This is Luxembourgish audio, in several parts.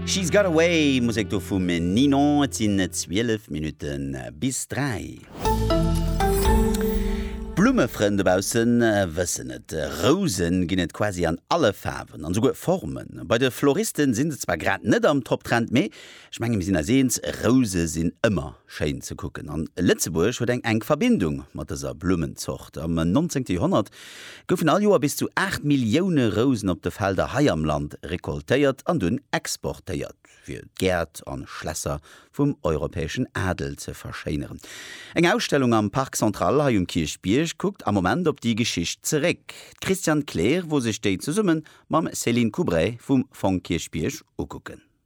She's Got Away, Musek do vum Ninon. Et sinn 12 Minutte bis 3. D'Blummefrënn dobausse wëssen et, Rouse ginn et quasi an alle Faarwen an esouguer Formen. Bei de Floriste sinn se zwar grad net am Top-Trend, mee Ech menge mir sinn eis eens, Rouse sinn ëmmer schéin ze kucken an Lëtzebuerg huet eng enk Verbindung mat dëser Blummenzort. Am nonzéngte Joerhonnert goufen all Joer bis zu 8 Millioune Rousen op de Felder hei am Land recoltéiert an dunn exportéiert, fir d'Gäert a Schlässer vum europäeschen Adel ze verschéineren. Eng Ausstellung am Parc Central hei um Kierchbierg kuckt am Moment op déi Geschicht zeréck. D'Christiane Kleer wor sech déi zesumme mam Céline Coubray vum Fong Kierchbierg ukucken.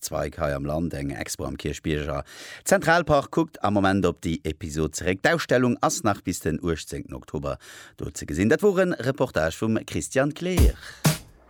Zweig hei am Land, eng Expo am Kierchbierger Zentralpark kuckt am Moment op déi Episod zeréck. D'Ausstellung ass nach bis den 18 Oktober do ze gesinn. Dat wor e Reportage vum Christian Kleer.